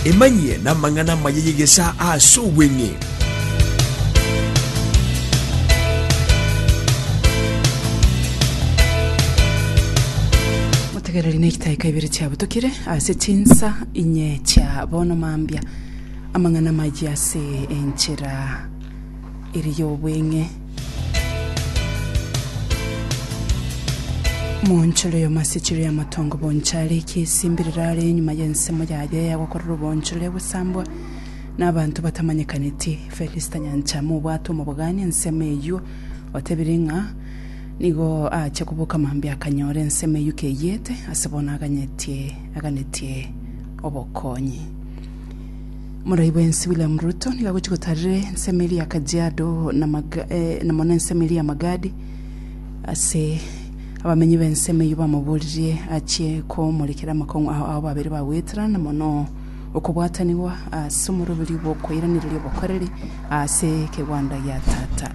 Emanyie namang'ana amaya y'egesaa ase obweng'e. Motegereri nechitaika ibere chiabutokire ase chinsa inye chia bono mambia, amang'ana amayia ase enchera ere y'obweng'e. Moonchero y'omasichiro y'amatongo bonchare ekiaesimbi riraare enyuma y'ensemo yaye eyagokorera oboonchorere egosambwa n'abanto batamanyekaneti. Felista Nyanchama obwate omobogani ensemo eyio otebire ng'a nigo aache koboka mambia akanyora ensemo eyio keyete ase bono aganyetie aganetie obokonyi. Morai bwensi William Ruto nigo agochi gotarire ensemo eria ya Kajiado na Maga- eh, na mono ensemo eria ya Magadi ase abamenyi b'ensemo eyio bamoboririe achie komorekera amakong'u ao ao babere bagwetera na mono okobwatanigwa ase omoroberi bw'okoiranereria obokoreri ase ekegwanda gia Tata.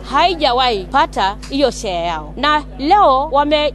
Haijawai pata hiyo share yao na leo wame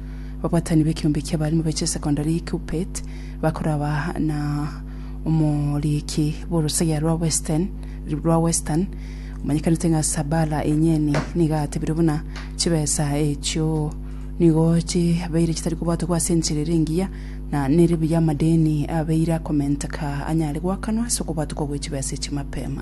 Ababatani b'ekeombe ki'abarimu be chisekondari ya Kuppet bakoraba na omoriiki bw'orosegea rwa Western rwa Western omanyekanete ng'a Sabala Enyeni nigo atebire buna chibesa echio nigo chibeire chitari kobwatogwa ase enchera ere engiya na nere buya amadeni abeire akomenteka anyare goakanwa ase okobwatogwa gwe chibesa echi mapema.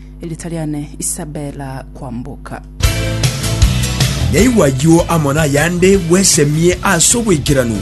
Erita riane Isabella Kwamboka. Naigwa ayio amo nayande, bwesemie ase obwaikeranu.